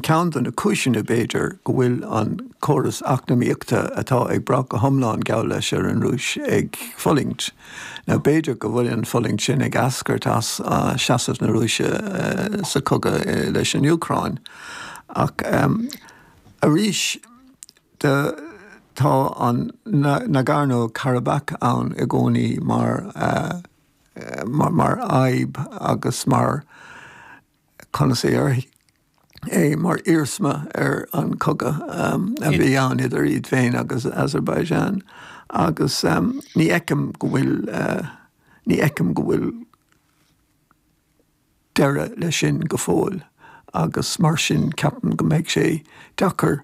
Ceann de na cúiseanna, b'fhéidir, go bhfuil an córas eacnamaíochta atá ag brath go hiomlán, geall leis, ar an Rúis ag fulaingt, nó b'fhéidir go bhfuil an fulaingt sin ag eascairt as seasamh na Rúise sa chogadh leis an Úcráin. Ach arís de, tá an Nagorno-Karabakh ann i gcónaí mar fhadhb agus mar, conas a chuirfidh? é mar iarsma ar an cogadh a bhí ann idir iad féin agus Azerbaijan agus ní fheicim go bhfuil ní fheicim go bhfuil deireadh leis sin go fóill agus mar sin ceapaim go mbeidh sé deacair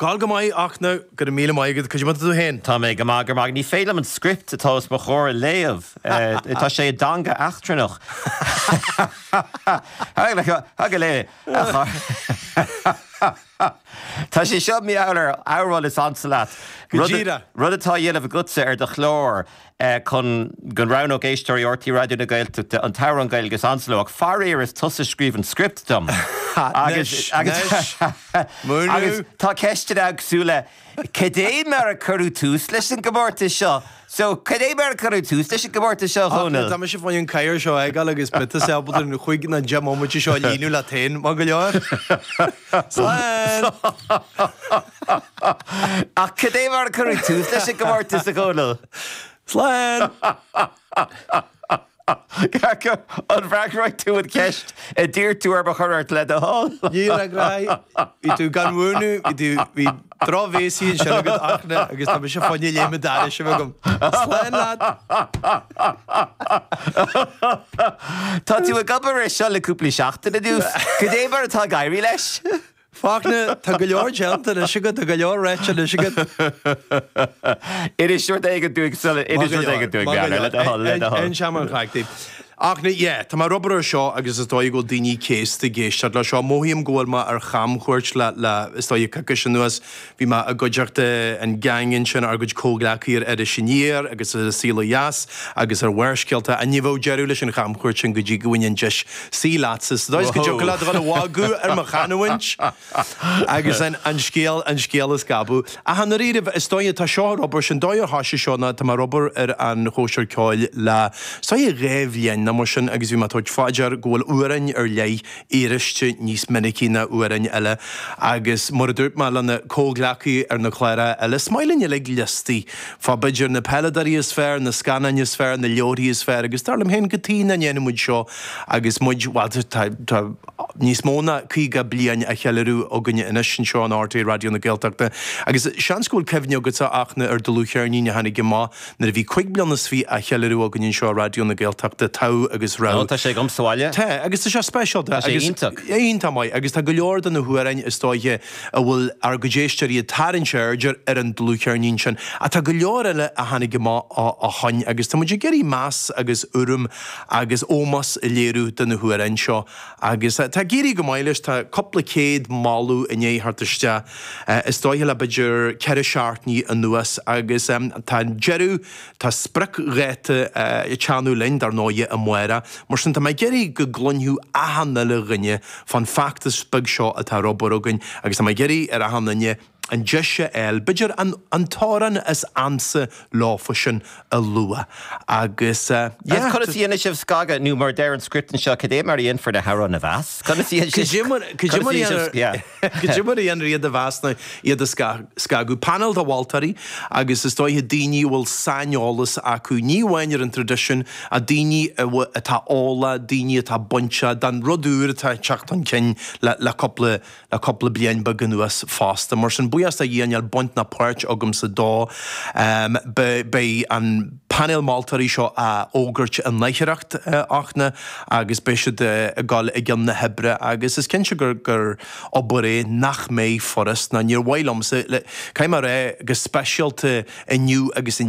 Gabh go maith, a Fhachtna. Go raibh míle maith agat. Cad é mar atá tú féin. Tá mé go maith, go raibh maith. Ní féidir liom an script atá os mo chomhair a léamh. Tá sé i dteanga eachtrannach. Thug a leithéid a chara. Tá sé seo mar gheall ar amhrán is ansa leat. Go díreach. Rud atá á dhéanamh agatsa ar do chlár. chun go roghnódh éisteoirí RTÉ Raidió na Gaeltachta an t-amhrán Gaeilge is ansa leo. Faraor is tusa a scríobh an script dom. Anois, anois, múineadh! Agus tá ceisteanna éagsúla, cad é mar a cuireadh tús leis an gcomórtas seo? So, cad é mar a cuireadh tús leis an gcomórtas seo, a Dhónaill? Tá mise ag gabháil an chathaoir seo a fhágáil agus thig leatsa, b'fhéidir, cúig nó deich mbomaite seo a líonadh leat féin, maith go leor. Slán! Ach cad é mar a cuireadh tús leis an gcomórtas, a Dhónaill? Slán! Ceaca, an bhfreagróidh tú an cheist a d'iarr tú orm a chur ort le do thoil? Ní fhreagróidh. Bhí tú gan mhúineadh, bhí tú, bhí drochbhéasaí ansin agat, a Fhachtna, agus tá mise fáinne léime d'airis agam. Slán, leaid! Tá tú ag obair air seo le cúpla seachtain anuas. Cad é mar atá ag éirí leis. Fachtna, tá go leor déanta anois agat, tá go leor ráite anois agat. Inis rud éigin dúinn sula inis rud éigin dúinn Beairna, le do thoil, le do thoil. Aon seamain a chleachtaí. A Fhachtna, yeah, tá mé ag obair air seo agus is dóigh go bhfuil daoine céasta ag éisteacht leis seo. Mothaím go bhfuil mé ar chamchuairt le, le, is dóigh coicís anuas. Bhí mé i gcuideachta an gheaing ansin, ár gcuid comhghleacaí ar Iris Aniar agus ar An Saol Ó Dheas agus ar Bharrscéalta, an ní bheadh deireadh leis an chamchuairt sin go dtí go bhfaighinn an deis suí leatsa sa dóigh is go dtiocfadh leat dhul a mhagadh ar mo chanúint agus an scéal an scéal a scabadh. Ach i ndáiríribh, is dóigh, tá seo ar obair, an dóigh ar thosaigh seo ná tá mé ag obair ar an Chóisir Ceoil le, is dóigh, dhá bhliain ná mar sin agus bhí mé ag tabhairt fá dear go bhfuil amhráin ar leith aríste níos minicí ná amhráin eile agus mar a dúirt mé lena comhghleacaí ar na cláir eile, is maith linn uilig liostaí fá b'fhéidir na peileadóirí is fearr, na scannáin is fearr, na leabharthaí is fearr agus dar liom féin cad chuige nach ndéanann muid seo agus muid, bhuel tá níos mó ná caoga bliain á cheiliúradh againne anois anseo in RTÉ Raidió na Gaeltachta agus seans go bhfuil cuimhne agatsa a Fhachtna ar dhlúthcheirnín a tháinig amach Nuair a bhí cúig bliana is fiche á cheiliúradh againn anseo i Raidió na Gaeltachta, Togha agus Rogha. Ó, tá sé agam sa bhaile. Tá, agus tá sé speisialta. Tá sé agus iontach. É iontach maith agus tá go leor de na hamhráin is dóiche a bhfuil ár gcuid éisteoirí ag tarraingt aird air ar an dlúthcheirnín sin. Ach tá go leor eile a tháinig amach ó ó shoin agus tá muid ag iarraidh meas agus urraim agus ómos a léiriú do na hamhráin seo Agus tá ag éirí go maith leis, tá cúpla céad moladh i ndiaidh theacht isteach is dóiche le b'fhéidir ceithre seachtainí anuas. Agus tá an deireadh, tá spriocdháta ag teannadh linn dar ndóighe amárach, mar sin tá mé ag iarraidh go gcluinfeadh achan uile dhuine fán feachtas beag seo atá ar obair againn agus tá mé ag iarraidh ar achan duine, an deis a fháil. B'fhéidir an t-amhrán is ansa leofasan a lua agus yeah. Conas a dhéanann sibh scagadh nó mar a deir an script anseo cad é mar a dhéanfar na hamhráin a mheas? Conas a dhéanann sibh scagadh? Cad é mar a dhéanann yeah. Cad é mar a dhéanfar iad a mheas nó iad a scagadh? Painéal de mholtóirí agus is dóiche daoine a bhfuil saineolas acu ní amháin ar an traidisiún ach daoine atá eolach, daoine atá bainteach don rud úr atá ag teacht chun cinn le cúpla le cúpla bliain beag anuas fosta. Mar sin, buíochas do Dhia níl baint ná páirt agamsa dó. Beidh an painéal moltóirí seo á fhógairt in aicearracht a Fhachtna agus beidh siad ag gol i gcionn na hoibre agus is cinnte gur obair é nach mbeidh furast ná níor mhaith liomsa, caithfidh mé a rá, go speisialta inniu agus inné.